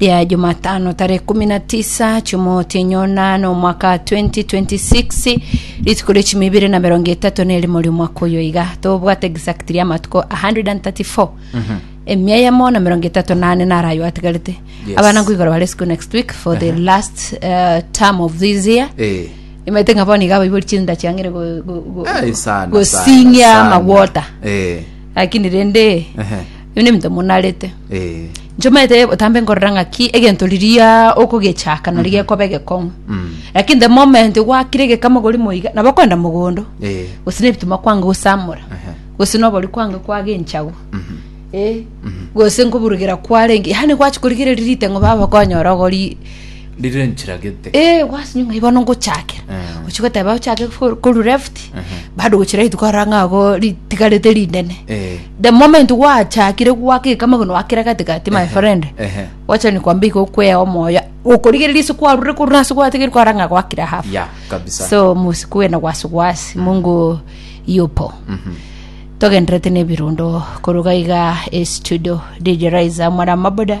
ya Jumatano tarehe kumi na tisa chimoti enyona na omwaka 2026 rituko ria chimi ibere na merongo etato na erimo ria omwaka oyo iga tobwate exact ria amatuko 134 emia yamo na merongo etato na ane naro ayo atigarete Yes. abana nkoigora bare school next week for the last uh, term of this year Eh. imete ng'a bono iga abaibori chinda chiang'ire go- go- go- Eh, sana, sana, gosinyia sana. magwota Eh. lakini rende Ehe. Ebio nebinto monarete Eh, inche omanyete botambe nkorora ng'aki egento riria okogechaka nari gekoba egekong'u mm, lakini the moment gwakire egekama ogori moiga nabo okoenda mogondo eh, gose na ebituma kwanga gosamora aha, gose nobori kwanga kwaga enchagu mhm, eh, gose nkoburugera kwarenge yani gwachi korigereria riteng'o baba okonyora ogori Rire enchera gete. Eh, gwasinyo ng'ai bono ngochakera Mm. ochi goteba ochake for- koru left bado gochi right kora ng'ago ritigarete rinene Eh. the moment gwachakire gwakeka amageno akera gatigati my friend Ehe. wacha nikwambia igo kwea omoyo okorigereria ase kwarure korwa nase gwatigeri kwara ng'a gwakira hafu Ya, kabisa. so musikuwe na wasiwasi mungu yupo Mhm. togenderete nebirundo koruga iga estudio dj riser mwana maboda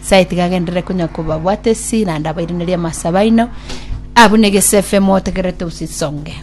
Nyasae tiga agenderere konya kobabwata esira, naende abairanerie amasabo aino, abwo negesefe motegererete gose isonge.